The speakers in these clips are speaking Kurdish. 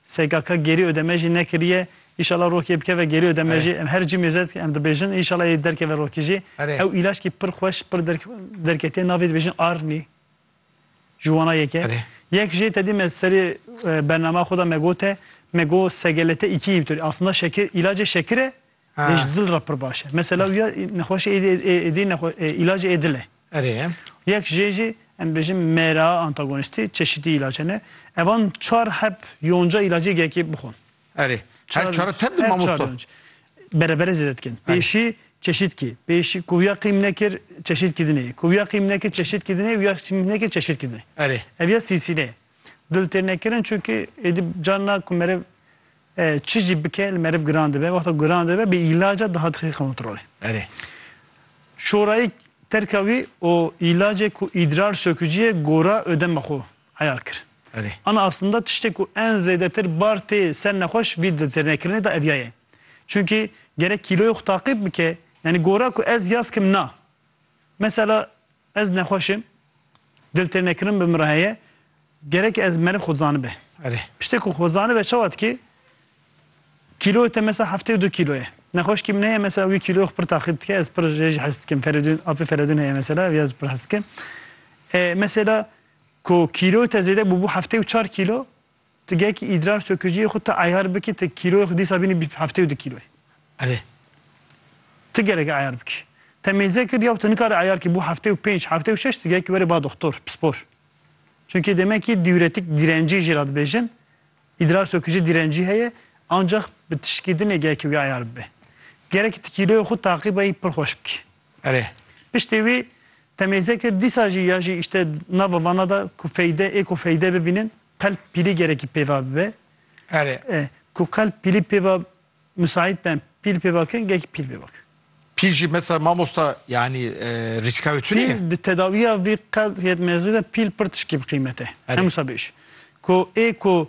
SKK gêrî ödeme jî nekiriye. Înşallah rokê bikeve gêrî ödeme jî. Em her cîmê zed em dibêjin înşallah yê derkeve rokî jî. Ew îlaçkî pir xweş pir derketîye navê dibêjin Arni. Ji wana yek e. Yek jê tedî me serê bernama xwe de me gote me got SGLT2 inhibitor. Aslında şekir îlacê şekir e Lê ji dil re pir baş e. Mesela wî ya nexweşê êdî êdî nexwe îlacê ê dil e. Erê. Yek jê jî em dibêjin mêra, antagonîstî çeşîtî îlace ne. Evan çar heb yonca îlacê yekê bixwin. Erê. Her çar tep di mamosta. Berebere zêde dikin. Pêşî çeşîtkî. Pêşî ku ya qîm nekir çeşîtkî dinê. Ku ya qîm nekir çeşîtkî dinê û ya qîm nekir çeşîtkî dinê. Erê. Ev ya sîlsîle ye. Dil tê nekirin çünkü êdî carina ku meriv çi jî bike li meriv giran dibe. Wexta giran dibe bi îlaca daha dixî kontrolê. Erê. Şorayî terka wî û îlacê ku îdrar söküciyê gora ödema xwe eyar kir. Erê. Ana aslında tiştê ku en zêdetir bar tê ser nexweş vî dil tê nekirinê de evya ye. Çünkü gerek kîloyê xwe taqîb bike, yanî gora ku ez yaz kim na. Mesela ez nexweş im, diltêrnekirin bi min re heye, gerek ez meriv xwe dizanibe. Erê. Piştê ku xwe zanibe çawa dikê? Kîloyê te mesela heftê û du kîlo ye. Nexweşkî min heye mesela wî kîloyê xwe pir taxîb dike, ez pir jê jî hes dikim. Ferîdûn, apê Feredûn heye mesela ev ya ez pir hes dikim. Mesela ku kîloyê te zêde bûbû heftê û çar kîlo, Ti gehkî îdrar söküciyê xwe ti eyar bikî ti kîloyê xwe dîsa bînî bîst heftê û du kîloyê. Erê. Ti gerek e eyar bikî. Te mêze kir yew ti nikare eyar kî bo heftê û pênc, heftê û şeş ti gehkî were ba doxtor, pispor. Çunkî demekî dîuretik dîrencî jî ra dibêjin. Îdrar sökücî dîrencî heye ancax bi tişikîdinê gehkî wî eyar bibe. Gerek e ti kîloyê xwe taqîbeyî pir xweş bikî. Erê. Piştê wî temêze kir dîsa jî ya jî îşte nava vana da ku feyde ê ku feyde bibînin qelb pîlî gerekî pêva bibe. Erê. E, ku qelb pîlî pêva misaît ben pîl pêva kin gekî pîl pêva kin. Pîl jî mesela mamosta yanî e, rîska wê tune ye? Pîl di tedawiya vî qelb yetmezî de pîl pir tişkî bi qîmet e. Erê. Hemûsa bêş. Ku ê ku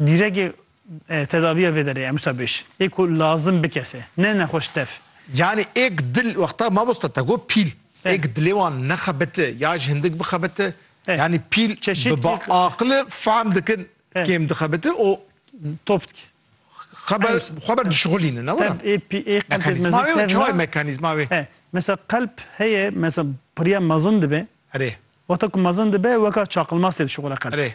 Dîregê tedaviya vê derê em wisa bêj ê ku lazim bikese ne nexweş tev. Yanî êk dil wexta mamosta te got pîl êk dilê wan nexebite ya ji hindik bixebite yanî pîl bi ba aqile fehm dikin kêm dixebite û top dike xeber xwe ber dişixulînin ne were. Mekanîzma wê çawa ye mekanîzma wê? Mesela qelb heye mesela piriya mezin dibe wexta ku mezin dibe weka çaqilmas tê dişixule qelb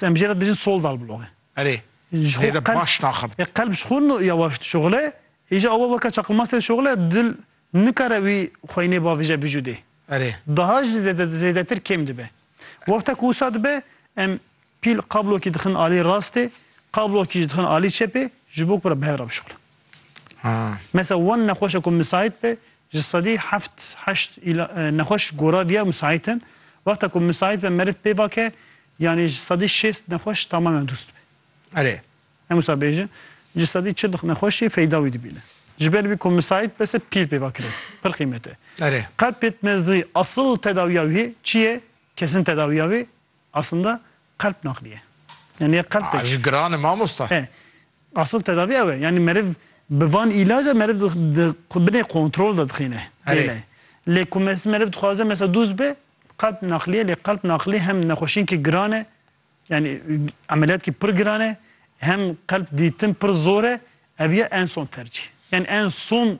Em jê re dibêjin soldal bloge. Erê. Ji xwe qelb baş naxim. E qelb ji xwe yawaş dişoxile. Îja awe weke çaqilmastê dişoxile dil nikare wî xweynê bavêje vijûdê. Erê. Daha jî zêdetir kêm dibe. Wexta ku wisa dibe em pîl qablokî dixin alî rastê, qablokî jî dixin alî çepê ji bo ku re bi hev re bişoxilin. Mesela wan nexweşa ku misait be ji sedî heft heşt îla nexweş gora viya misait in. Wexta ku misait be meriv pê vake yanî ji sedî şêst nexweş tamamen dûst be. Erê. Em wisa bêjin ji sedî çil nexweş jî feyda wî dibîne. Ji ber vî ku misait be se pîl pê va kire pir qîmet e. Erê. Qelb pêtmezî asıl tedawiya wî çi ye? Kesin tedawiya wî Aslında qelp naqliye. Yani ya qelp tek. Ji giran e mamosta. He. Asıl tedavi ew e. Yani meriv bi van îlaca meriv di di binê kontrol de dixîne. Herê. Dêle. Lê ku mes meriv dixwaze mesela dûz be qelp naqliye lê qelp naqlî hem nexweşînkî giran e yani emeliyatkî pir giran e hem qelp dîtin pir zor e ev ye en son tercîh. Yani en son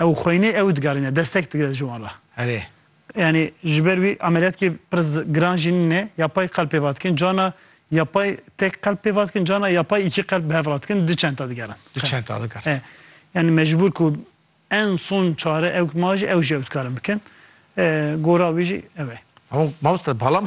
Ew xweyne ew digarîne destek dide ji wan re. Erê. Yanî ji ber wî ameliyatkê pir giran jî nîne, yapay qelb pêva dikin, cana yapay tek qelb pêva dikin, cana yapay îkî qelb bi hev re dikin, du çenta digerin. Du çenta digerin. E, yanî mecbûr ku en son çare ew ma jî ew jî ew dikarin bikin. E, gora wî jî ew e. Hûn mamoste balam